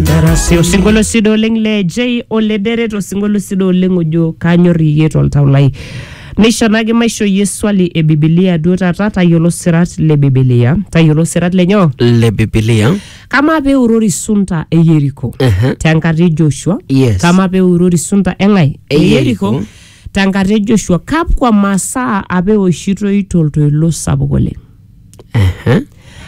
Darasi osinkolio sidai oleng le J Olederet osinkolio sidai oleng ojo kanyor iyie toltau lai. Neisho naake maisho iyie swali e Bibilia duo taata tayiolo sirat le Bibilia. Tayiolo sirat lenyoo? le bibilia Kamaa pee eurori sunta e Yeriko Ehe. tenkata e Joshua? Yes. Kamaa pee eurori sunta e ng'ae? E Yeriko. Tenkata e Joshua, kakwa masaa apa eoshitoi toltoilo sapuk oleng? Ehe.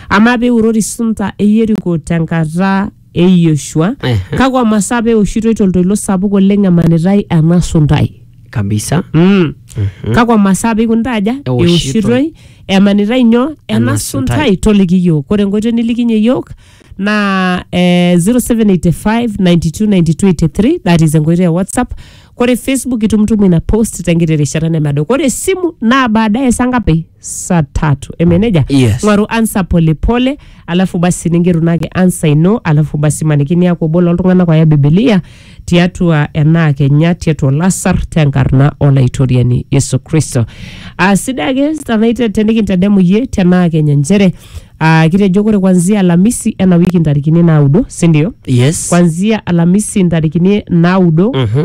Amaa pee eurori sunta e Yeriko tenkata e Yoshua, Ehe. kakwa masaa pee eoshitoi toltoilo sapuk oleng emanitai ena suntai? Kabisa. Mm. Kakwa masaa pee eikunita aja? Eoshitoi. Eoshitoi emanitai nyoo ena Ena suntai. suntai toliki iyiook. Ore enkoitoi nilikinye iyiook naa eh, 0785 92 92 83 that is enkoitoi e WhatsApp. Ore Facebook itumtumu ina post tenkiti rishata nemedo. Ore esimu naa baadaye saa ngapi? saa tatu emeneja Yes. ng'oru ansa polepole alafu basi ningeru nake ansa ino alafu basi maniki niaku obo loltung'anak oya bibilia tiatua enaa kenya tiatua olasar tenkarna olaitoriani yesu kristo uh, sidai ake tanaite tenikintadamu yie tenaa kenya nchere uh, kitejo kore kwanzia alamisi ena wiki ntarikini naudo sindio yes kwanzia alamisi ntarikini naudo Mhm.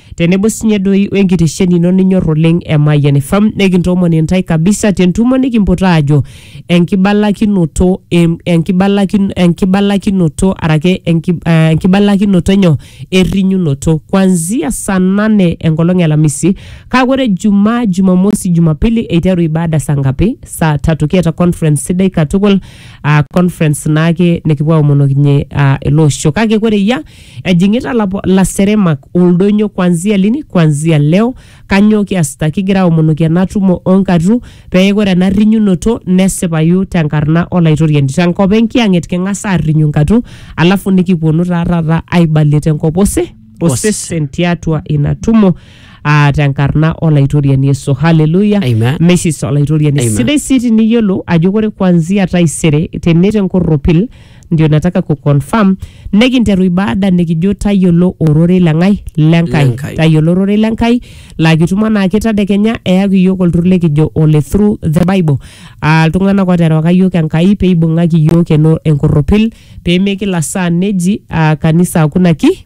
tenebo sinye doi wenkitesheni ino ninyor oleng e Mayian FM nekintoomon intae kabisa tentumo nikimpot aajo enkibalakinoto em- enkibalakin- enkibalakinoto arake enki- eh, enkibalakinoto enyo errinyunoto kwanzia saa nane enkolong e alamisi kake ore jumaa jumamosi jumapili eiteru ibada saa ngapi saa tatu kiata conference sidai katukul aa conference naake nikipuo aomonokinyie aa ele osho kake kore eyia Ejing'ita lapo- laseremak oldonyo kwanzia lini? Kwanzia leo. Kanyoo kiasita? Kigira aomonoki ena tumo o nkatitin pee ore ena rrinyunoto nesipayu te nkarna Olaitoriani. Te nkop e Nkiyang'et king'as aarrinyu nkatu alafu nikiponu taa taata aibalie te nkop ose- osesen tiatua ina tumo aa te nkarna Olaitoriani Yesu. Haleluya! Amen. Meishis Olaitoriani. Amen. Sidai sii tiniyiolo ajo ore kwanzia taisere tene te nkorropil ndio nataka kuconfirm nekinteru ibada nikijo tayiolo ororei lengai lenkai Lenkai. tayiolo ororei lenkai laa kitum anaake tadekenya eyaki iyiok olturur likijo ole through the bible Ah, iltung'anak oterewaka iyiok enkai peibung'aki iyiok eno enkorropil pemekila saa neji ah, kanisa hakuna ki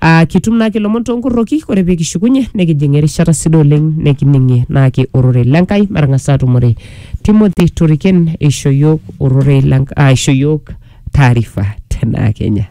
Ah, kitum naake ilomon toonkorroki ore pee kishukunye nikijing erishata sidai oleng nikining'ie naake ororei lenkai matang'as aatumore Timothy Toriken eisho yiok ororei lenk- ah, eisho yiok taarifa tenaa Kenya.